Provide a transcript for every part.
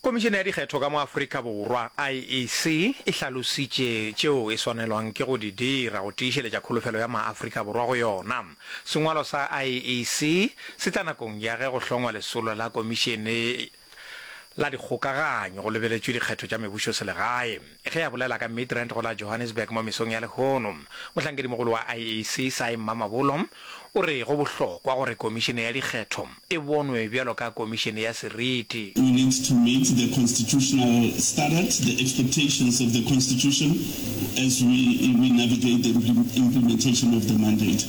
Komišene ya Dikgetho ka mo Afrika Borwa, IEC, e hlalositše tšeo e swanelwang ke go di dira go tiišeletša kholofelo ya maAfrika Borwa go yona. Sengwalo sa IEC se tla nakong ya ge go hlongwa lesolo la Komišene la Dikgokaganyo go lebeletšwe dikgetho tša mebušoselegae. Ge a bolela ka Midrand go la Johannesburg mo mesong ya lehono, mohlankedi-mogolo wa IEC, Sy Mamabolo, o re go bohlokwa gore Komišene ya Dikgetho e bonwe bjalo ka komišene ya seriti. We need to meet the constitutional standards, the expectations of the constitution as we we navigate the implementation of the mandate.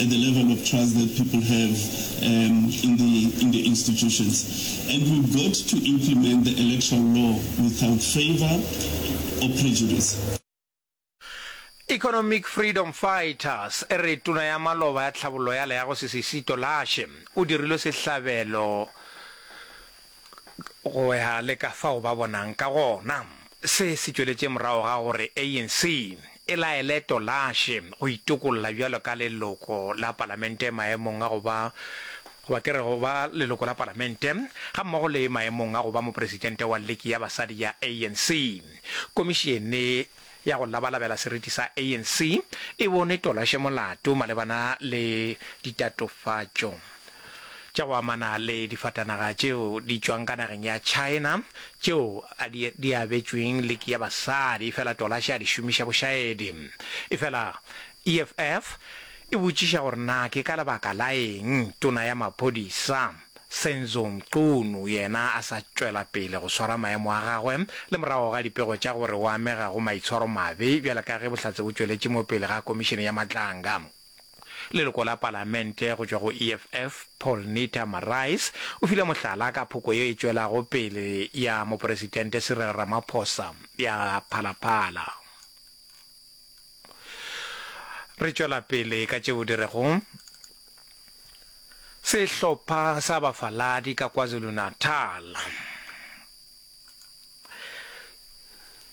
at the level of trust that people have um, in, the, in the institutions. And we've got to implement the electoral law without favor or prejudice. Economic Freedom Fighters e re tona ya maloba ya tlhabollo ya leago Sisisi Tolashe o dirilwe sehlabelo go ya le ka fao ba bonang ka gona. Se se tšweletše morago ga gore ANC e laele Tolashe go itokolla bjalo ka leloko la palamente maemong a go ba goba ke re go ba leloko la palamente gammogo le maemong a go ba mopresidente wa liki ya basadi ya ANC. Komišene ya go labalabela seriti sa ANC e bone Tolashe molato malebana le ditatofatšo tša go amana le difatanaga tšeo di tšwang ka nageng ya China tšeo a di, di abetšweng liki ya basadi efela Tolashe a di šomiša bošaedi. Efela EFF e botšiša gore na ke ka lebaka la eng tona ya maphodisa Senzo Mchunu yena a sa tšwela pele go swara maemo a gagwe le morago ga dipego tša gore o amega go maitshwaromabe bjale ka ge bohlatse bo tšweletše mo pele ga komišene ya matlanga. Leloko la palamente go tšwa go EFF, Paul Nita Marais, o file mohlala ka phoko ye e tšwelago pele ya Moporesitente Cyril Ramaphosa ya Phalaphala. Re tšwela pele ka tšeo di rego. Sehlopha sa bafaladi ka KwaZulu-Natal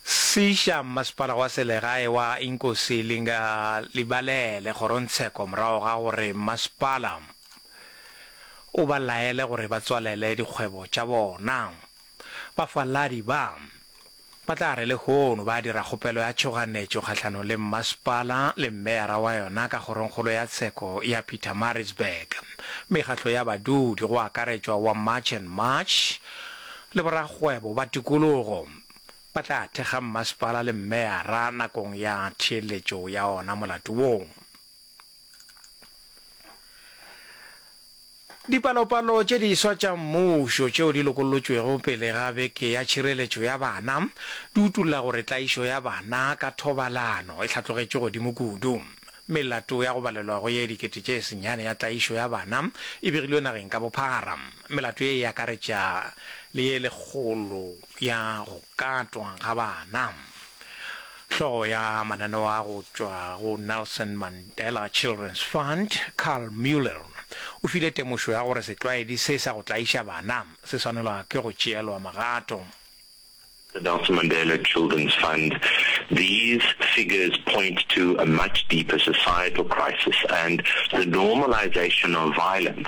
se iša mmasepala wa selegae wa Inkosi Linga Libalele kgorongtsheko morago ga gore mmasepala o ba laele gore ba tswalele dikgwebo tša bona. Bafaladi ba Ba tla re lehono ba dira kgopelo ya tšhoganetšo kgahlanong le mmasepala le meyara wa yona ka kgorongkgolo ya tsheko ya Pietermaritzburg, mekgahlo ya badudi go akaretšwa wa March and March le borakgwebo ba tikologo ba tla thekga mmasepala le meyara nakong ya theeletšo ya ona molato woo. Dipalopalo tše diswa tša mmušo tšeo di lokollotšwego pele ga Beke ya Tšhireletšo ya Bana di utolla gore tlaišo ya bana ka thobalano e hlatlogetše godimo kudu. Melato ya go balelwa go ye dikete tše senyane ya tlaišo ya bana e begilwe nageng ka bophara. Melato ye e akaretša le ye lekgolo. ya go katwa ga bana. Hlogo ya mananeo a go tšwa go Nelson Mandela Children's Fund, Karl Mueller, o file temošo ya gore setlwaedi se sa go tlaiša bana se swanelwa ke go tšeelwa magato. The Nelson Mandela Children's Fund, These figures point to a much deeper societal crisis and the normalization of violence.